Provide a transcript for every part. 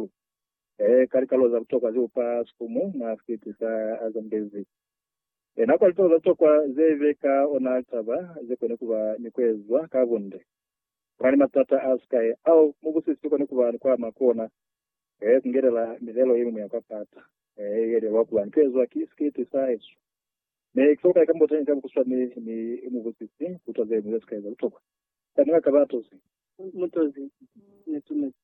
Jesu. He ka likalolo za butokwa ze upa sikumu mwa sikiti sa Azambezi. He na kwa litolo za butokwa ze be ka ona litaba ze koni kuba ni kuezwa ka bunde. Kuna ni matata a sikai ao mubusisi ukoni kuba ni kuama ku ona, he kungelela milelo yemiñwi ya kwa pata he ye lelwa kuba ni kuezwa ki sikiti sa Jesu. Mi ki folukai kamboteñi ka bukuswani ni mubusisi butwa zeñwi ze sikai za butokwa. Sa ni nga kaba atozi. Mutozi, netumezi.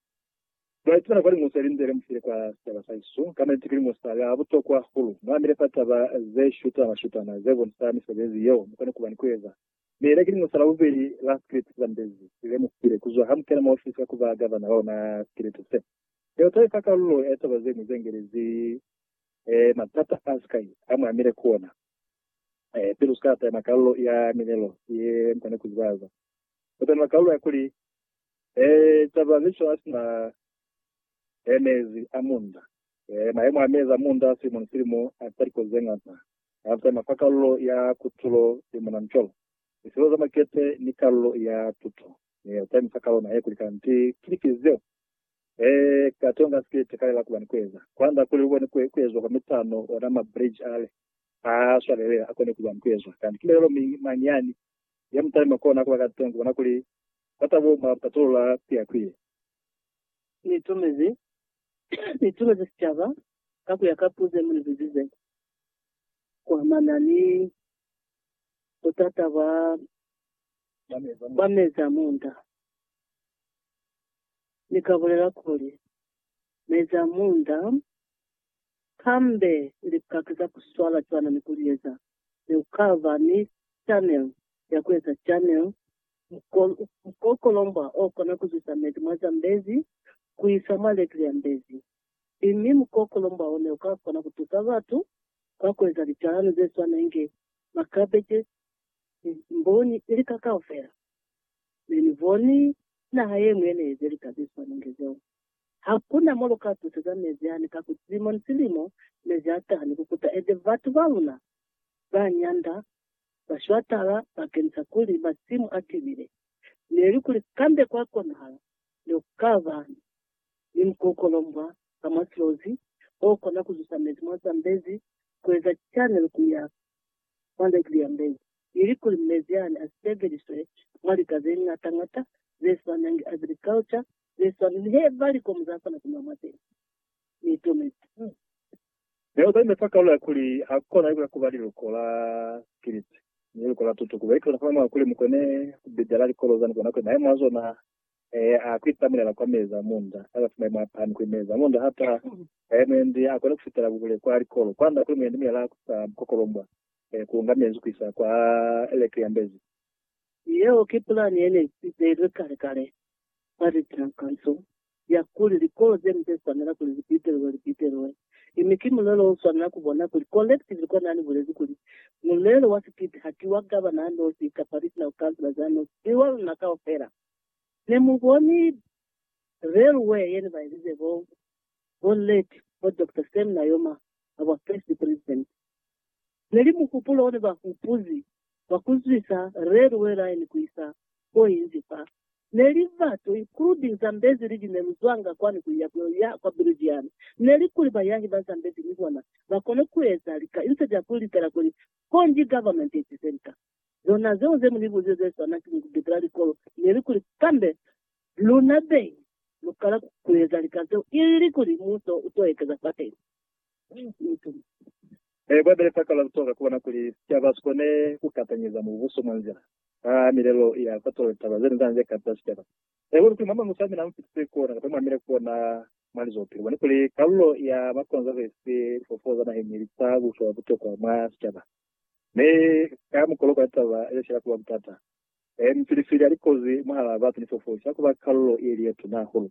Mwa ipitana kwa limo seli nze lemufile kwa sicaba sa Jesu, kamba niti ki limo sa ya butokwa hahulu. Mwa mile fa taba ze shutana shutana ze bonisa misebezi yeo mu kona kuba ni kueza. Mi le ki limo sa la bubeli la sikiliti sa mbezi li lemufile kuzwa ha mu kena mwa ofisi ya kuba gavana wa ona sikiliti se. Yeo ta ifa kalulo ya taba zeñwi ze ngelezi matata a sikai a mwa mile ku ona. Pili usika tatema kalulo ya milelo ye mu kona kuzibaza, tatema kalulo ya kuli Ee, caba ki cona sina e mezi a munda. Ee, mayemo a mezi a munda silimo ni silimo a za liko zeñata. A za mafa kalulo ya kutulo ye muna ncolo, liselo za makete, ni kalulo ya tuto. Mi a za mi fa kalo naye kuli kanti ki lifi zeo. Ee, kate unga sikete kale la kuba ni kueza. Kwanda kuli lukone ku, kuezwa kwa mitano, ona ma bridge ale a swalelela akone kuba ni kuezwa. Kanti ki lelelo mi, mañi yani? ya mutalima kona kuba kateñi kubona kuli batabo mwa patolola kuyakwiye. Niitumezi niitumezi sicaba ka kuya ka puzo yemunibuzize kuamana ni butata bwa bwa mezi a munda. Nikabulela kuli, Mezi a munda kambe lipaki za ku swala cwana ni ku li eza, mi u ka ba ni chanel ya ku eza chanel, mukokolombwa o kona ku zwisa mezi mwa Zambezi ku isa mwa Lake Lyambezi, mi mukokolombwa o ne u ka kona ku tusa batu ka ku eza licalano ze swana inge makabeje, mboni, ni lika kaufela. Ne ni boni naha ye ñwi ye ne eze lika ze swana inge zeo. Hakuna mo luka tuseza mezi ani ka kuti silimo ni silimo mezi ataha ni kukuta ende batu baluna ba nyanda ba shwatala bakenisa kuli masimu a tibile. Neli kuli kambe kwa konahala ne ku ka ba ni mukokolombwa ka mwa silozi o kona kuzusa mezi mwa Zambezi kueza cana ni kuya mwa Lately ya Mbeya, ilikuli mezi ani asebelizwe mwa lika zeñata ñata zeswanangi agriculture zeswana nihe ba likomu zakona kunwa mwa zene, niitomezi. Neo ba imefa kalulo ya kuli hakona ikuta kuba liluko la Kiliti ni liluko la tutu, kuba ikiluta fana mwa kuli mukone kubidela likolo zani konakwe maemo azona Ee, a kwita mulela kwa meza munda, a zafumai mwa pan kuli meza munda ha taha. Ee, mwendi a kona kufitela buhule kwa likolo, kwanda kuli mwendi mulela ha kusa bukokolombwa, ee, kuunga mezi kuisa kwa eleke ya mbezi. Yeo ki pulani yene ibeilwe kale-kale mwa litankanso, ya kuli likolo zeni ze swanela kuli libitelwe, libitelwe. Ini ki mulelo o swanela ku bona kuli collectively kwa nani bulezi kuli, Mulelo wa sikiti ha ki wa gavana a nosi kapa regional councillors a nosi, ki wa luna kaufela. Ne mu boni railway ye ne ba ezize bo, bo late, bo Doctor Sam Nujoma, ha bwa first president. Ne li muhupulo one ba hupuzi wa ku zwisa railway line ku isa ko inzi fa ne li batu, including Zambezi liji ne lu zwanga kwani ku iya ku ya kwa Belgium, ne li kuli bayahi ba Zambezi ni bona ba kone ku eza lika insa ja ku likela kuli Congy government i tize lika zona zeo ze mu ni buzile ze swana ki ku bikela likolo, ne li kuli kambe luna beñi lu kala ku eza lika zeo ili kuli muso u to ekeza fateni. Ee, Bibele sa kala kutoka ku bona kuli sicaba si kone ku katanyeza Mubuso mwa nzila a milelo ya sa tole taba ze nzaa ze kata sicaba. Ee, Luli kuli mwa mañi Musamina a mu fitise kona kapa mwa mile kona mwa lizopilo? Boni kuli kalulo ya makonzo he si lifofo za naheñi ili sa butwa butokwa mwa sicaba, mi ka mukolo kwa litaba ye sila kuba butata. Ee, mifilifili ya likozi mwahalaa batu ni fofo isila kuba kalulo ye li ye tuna hahulu.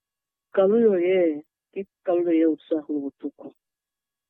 Kalulo ye ki kalulo ye utwisahulu butuku.